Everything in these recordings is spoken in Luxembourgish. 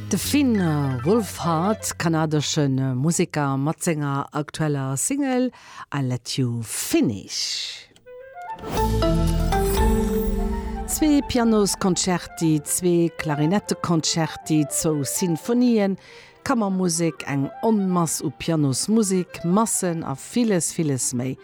De Finn Wolfhard, kanadesche Museker, mat senger aktueller Single I Let You Finish. Zwee Pianosconcerti, zwee Klarinetteconcerti, zwou Sinfonien, Kammermusek, eng Onmass u Pianosmusek, Massen a villes, villes méi.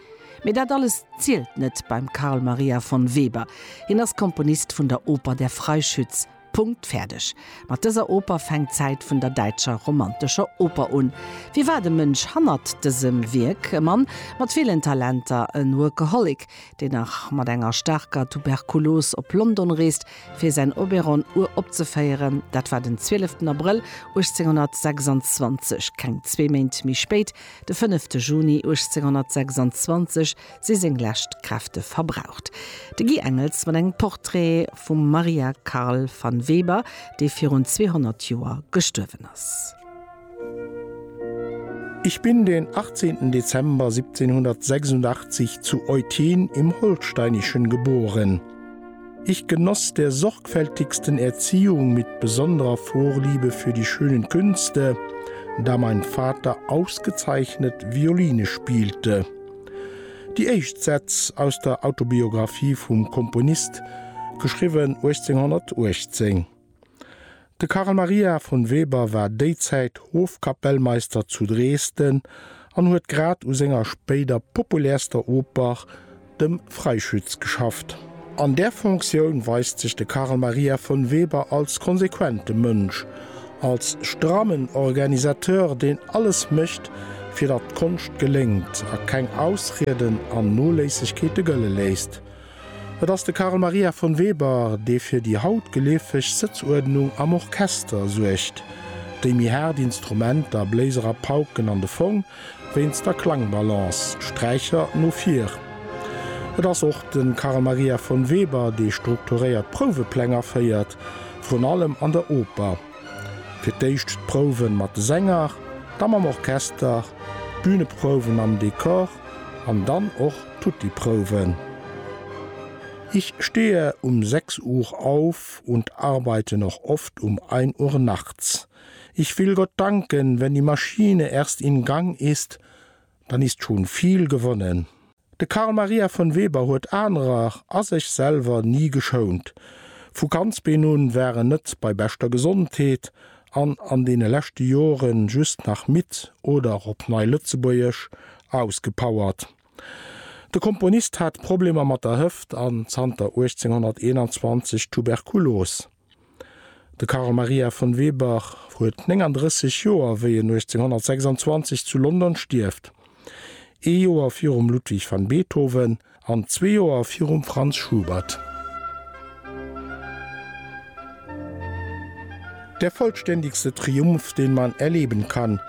Mee dat alles zielt net beim Carl Maria von Weber. Hien ass Komponist vun der Oper Der Freischütz. Punkt, fäerdeg. Mat dëser Oper fänkt d'Zäit vun der däitscher romantescher Oper un. Wie war de Mënsch hannert dësem Wierk? E Mann mat villen Talenter, en Workaholic, deen nach mat enger staarker Tuberkulos op London reest, fir säin Oberon uropzeféieren. Dat war den 12 ten Abrëll 1826. Keng zwee Méint méi spéit, de 5 te Juni 1826, si seng lescht Kräfte verbraucht. De Guy Engels mat engem Portrait vum Maria Carl van Weber, dee virun 200 Joer gestuerwen ass. Ich bin den 18. Dezember 1786 zu Eutin im Holsteinischen geboren. Ich genoss der sorgfältigsten Erziehung mit besonderer Vorliebe für die schönen Künste, da mein Vater ausgezeichnet Violine spielte. Déi éischt Sätz aus der Autobiographie vum Komponist, geschriwwen 1818. De Carl Maria von Weber war déizäit Hofkapellmeister zu Dresden an huet grad u senger spéider populärster Oper, dem Freischütz, geschafft. An där Fonctioun weist sech de Carl Maria von Weber als konsequente Mënsch, als strammen Organisateur, deen alles mécht, fir datt d'Konscht geléngt a keng Ausrieden an Noléissegkeete gëlle léisst. Et ass de Carl Maria von Weber, dee fir déi haut geleefeg Sëtzuerdnung am Orchester suergt, déi méi haart Instrumenter, Bléiser a Pauken, an de Fong wéinst der Klangbalance, d'Sträicher, no vir. Et ass och de Carl Maria von Weber, dee strukturéiert Prouwepläng aféiert, vrun allem an der Oper, fir d'éischt d'Prouwen mat de Sänger, da mam Orchester, d'Büneprouwen am Dekor an dann och tutti Prouwen. Ich stehe um 6 Uhr auf und arbeite noch oft um 1 Uhr nachts. Ich will Gott danken, wenn die Maschine erst in Gang ist, dann ist schon viel gewonnen. De Carl Maria von Weber huet anerer a sech selwer ni geschount. Vu Kandsbeen un war en net bei beschter Gesondheet an an deene leschte Joren just nach midd oder, op Nei-Lëtzebuergesch, ausgepowert. De Komponist hat Problemer mat der Hëft an zanter 1821 Tuberkulos. De Carl Maria von Weber huet 39 Joer, wéi en 1826 zu London stierft, ee Joer virum Ludwig van Beethoven an zwee Joer virum Franz Schubert. Der vollständigste Triumph, den man erleben kann,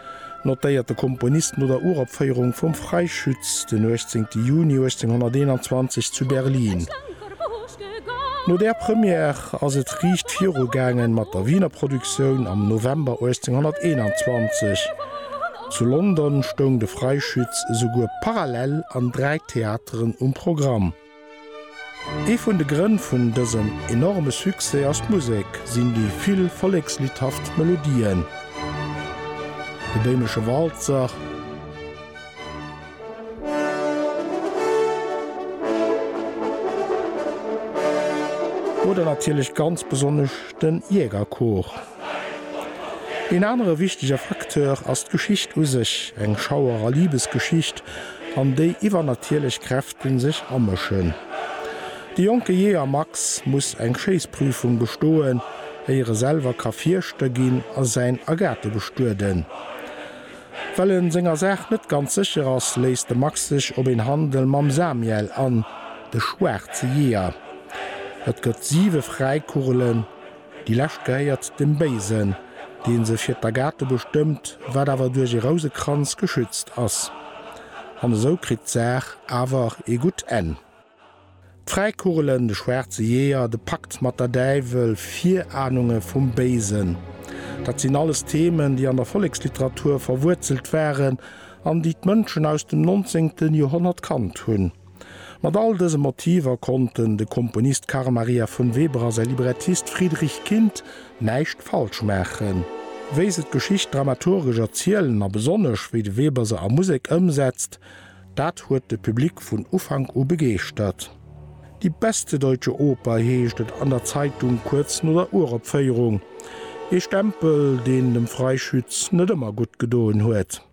notéiert de Komponist no der Uropféierung vum Freischütz den 18 Juni 1821 zu Berlin. No där Première ass et riicht viru gaangen mat der Wiener Produktioun am November 1821. Zu London stoung de Freischütz esouguer parallel an dräi Theateren um Programm. Ee vun de Grënn vun dësem enorme Succès ass d'Musek, sinn déi vill volleksliddhaft Melodien, de Béimesche Walzer, oder natierlech ganz besonnesch den Jägerchor. Een anere wichtege Facteur ass d'Geschicht u sech, eng Schauer a Libesgeschicht, an déi iwwernatierlech Kräfte sech amëschen. De jonke Jeeër Max muss eng Schéissprüfung bestoen, éier e selwer ka Fierschter ginn a säin Agathe bestueden. Well e senger Saach net ganz sécher ass, léisst de Max sech op een Handel mam Samiel an, de schwaarze Jeeër. Et gëtt siwe Fräikurrelen. Déi lescht gehéiert dem Béisen, dee se fir d'Agathe bestëmmt, wat awer duerch ee Rousekranz geschützt ass. An esou kritt d'Saach awer ee gutt Enn. D'Fräikugelen, de schwaarze Jeeër, de Pakt mat der Däiwel, Virahnunge vum Béisen, dat sinn alles Themen, déi an der Volleksliteratur verwuerzelt waren an déi d'Mënschen aus dem 19. Joerhonnert kannt hunn. Mat all dëse Motiver konnten de Komponist Carl Maria von Weber a säi Librettist Friedrich Kindt näischt falsch maachen. Wéi se d'Geschicht dramaturgesch erzielen a besonnesch wéi de Weber se a Musek ëmsetzt, dat huet de Public vun Ufank u begeeschtert. Die beste deutsche Oper heescht et an der Zeitung kuerz no der Uropféierung. Ee Stempel, deen dem Freischütz net ëmmer gutt gedoen huet.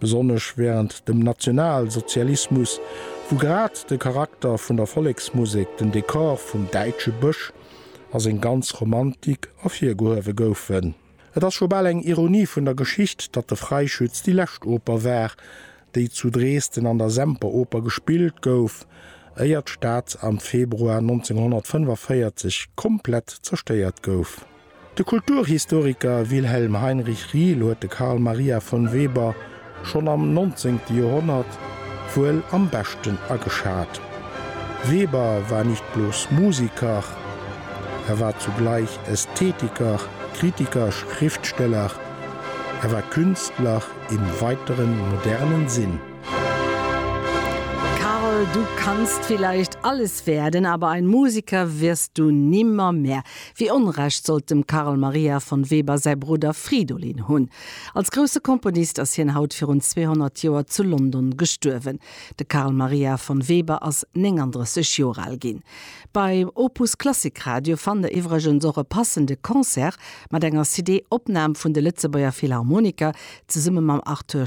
Besonnesch wärend dem Nationalsozialismus, wou grad de Charakter vun der Volleksmusek, den Dekor vum däitsche Bësch a seng ganz Romantik ervirgehuewe goufen. Et ass scho bal eng Ironie vun der Geschicht, datt de Freischütz déi lescht Oper war, déi zu Dresden an der Semperoper gespillt gouf, éier d'Stad am Februar 1945 komplett zerstéiert gouf. De Kulturhistoriker Wilhelm Heinrich Riehl huet de Carl Maria von Weber schonn am nonzéngte Joerhonnert wuel am beschten ageschat. Weber war nicht bloß Musiker, er war zugleich Ästhetiker, Kritiker, Schriftsteller, er war Künstler im weiteren modernen Sinn. Carl, du kannst vielleicht alles werden, aber ein Musiker wirst du nimmermehr. Wéi Onrecht sollt dem Carl Maria von Weber säi Brudder Fridolin hunn? Als grousse Komponist ass hien haut virun 200 Joer zu London gestuerwen. De Carl Maria von Weber ass 39 Joer al ginn. Bei Opus Klassik Radio fannt der iwwregens och e passende Concert mat enger CD-Opnam vun de Lëtzebuerger Philharmoniker zesumme mam Arthur.